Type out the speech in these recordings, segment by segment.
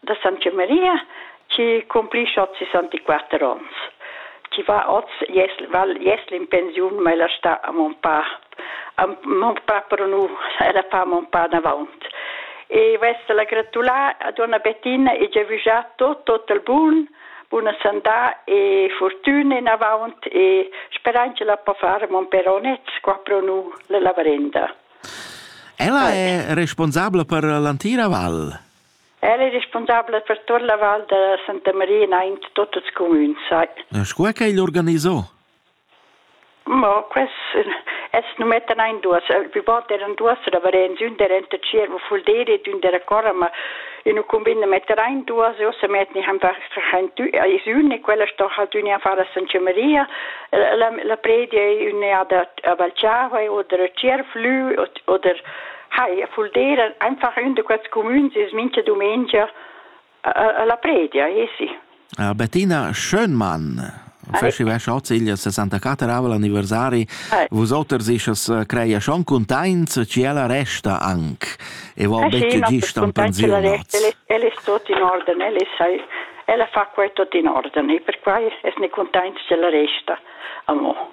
da Santa Maria chi cumplischa oz 64 ons. Chi va oz jes, val jesl in pensiun, ma ella sta a mon pa. A mon pa però nu, ella fa mon pa davaunt. E vesta la gratulà a donna Bettina e giavüschà tot, tot il bun, buna sandà e fortüna inavaunt e speran che la po fare mon peronet, qua pro nu la lavarenda. Ella è responsabla per l'antira val. El è responsabel per tutta la val da Santa Maria in aint tot ils cumüns, sai. Sco è che el organizò? Mo quest es nu mettan ein duos. Pi bod eran duos da Varenz, ün der enta Tschiervo Fulderi ed ün der a Cora, ma in u cumbina metter ein duos e ossa metten ich einfach is ün e quella sto halt ün a far a Santa Maria. La predia è ün a da a Valciava oder a Tschierflü oder Hai, vul dir einfach ün da quels cumüns es mincha dumengia a la predia, esi. Bettina Schönmann fascheva schoziglia 64 anniversari. Vusoters ischas creia schon cuntaints chi ella resta anc e vo betg gist an pensiunats. El è tot in orden, el è ella fa quai tot in orden e per quai es ne cuntaints ch'ella resta amo.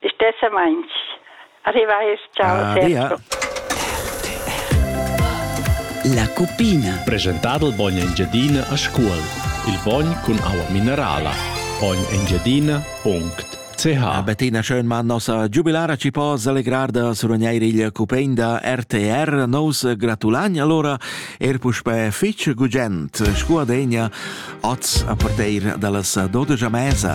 Stessamaints. Arrivai es ciao sempre. La cuppina. Presentà dal bogn Engiadina a Scuol. Il bogn cun aua minerala. Ognengiadina.ch A Bettina Schönmann nossa giubilara ci po selegrar da surogneir il cupein da RTR. Nous gratulagn allora er puspè fitg gugent scu adegna oz a parteir dallas 12 a mesa.